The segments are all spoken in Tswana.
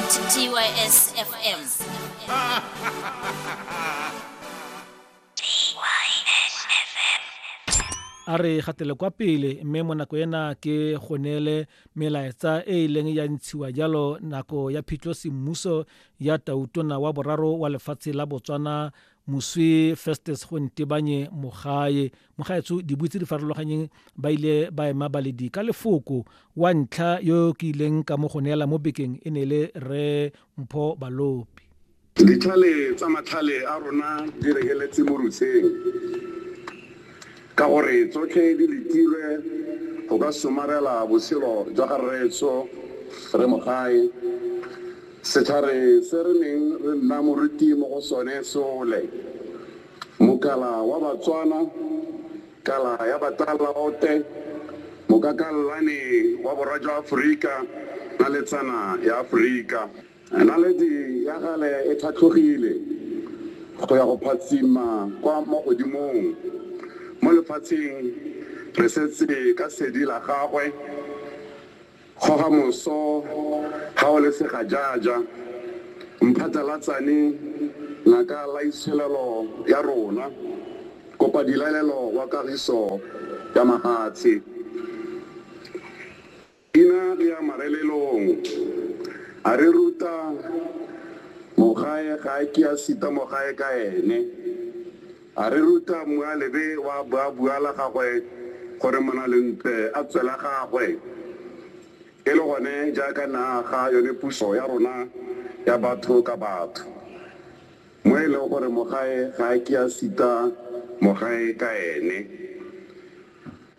TYS FM. a re gatele kwa pele mme mo nako ena ke go neele melaetsa e e leng ya ntshiwa jalo nako ya phitlho semmuso ya tautona wa boraro wa lefatshe la botswana moswi festus gontebanye mogae mogaetsho dibui tse di farologanyeng ba ile ba ema baledi ka lefoko wa ntlha yo ke ileng ka mo go neela mo bekeng e ne le re mpho balopi ditlhale tsa matlhale a rona di rekeletse mo rutsheng ka gore tsotlhe di letilwe go ka somarela botshelo jwa ga rreetso re mogae setlhare se re neng re nna moruti mo go sone sole Mokala wa Batswana, Kala ya Batalaote, Mokakallane wa Borwa jwa Aforika, Naletsana ya Aforika. Naledi ya gale e tlhatlhogile go ya go phatsima kwa mo godimong. Mo lefatsheng re setse ka sedi la gagwe. Kgoga moso ga o le segajaja, mphatlalatsane ngaka laitsholelo ya rona, kopa dilaelelo wa kagiso ya mafatshe. Ina re ya marelelong, a re ruta mogae ga a ke a sita mogae ka ene. A re ruta Mmualebe wa boabua la gagwe gore Monalentle a tswe la gagwe. E le gone jaaka ne a aga yone puso ya rona ya batho ka batho, mo e leng gore mogae ga a ke a sita mogae ka ene.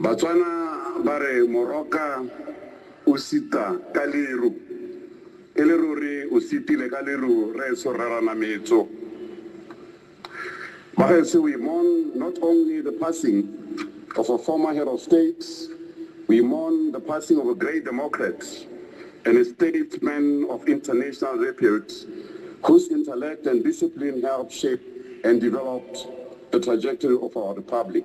Batswana ba re moroka o sita ka leru. E le ruri o sitile ka leru rraetsho Rre Ranametso. Bagaetsho we mourn not only the passing of a former head of state, we mourn the passing of a great democrat and a statesman of international repute whose intellect and discipline helped shape and developed the trajectory of our republic.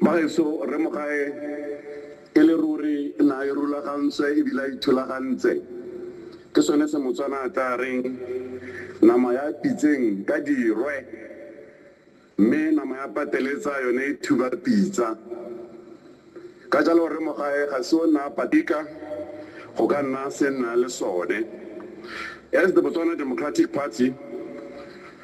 Bagaetsho, Rre Mogae e le ruri ne a irulagantswe e bile a ithulagantse. Ke sone se Motswana a tlaa reng, Nama ya pitseng ka dirwe, mme nama ya pateletsa yone e thuba pitsa. Ka jalo Rre Mogae ga se o nna a patika go ka nna se nna le sone. As the Botswana Democratic Party,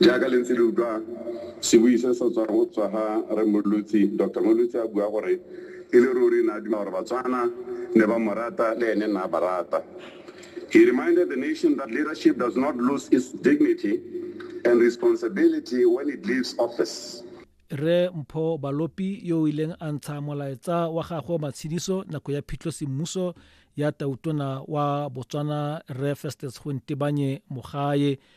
Jaaka le ntse le utlwa sebui se se tswang go tswa ga Rre Molotsi, Doctor Molotsi a bua gore e le ruri ne a duma gore Batswana ne ba mo rata le ene ne a ba rata. He reminded the nation that leadership does not lose its dignity and responsibility when it leaves office. Rre Mpho Balopi yo o ileng a ntsha molaetsa wa gagwe wa matshediso nako ya phitlho semmuso ya Tautona wa Botswana Rre Festus Gontebanye Mogae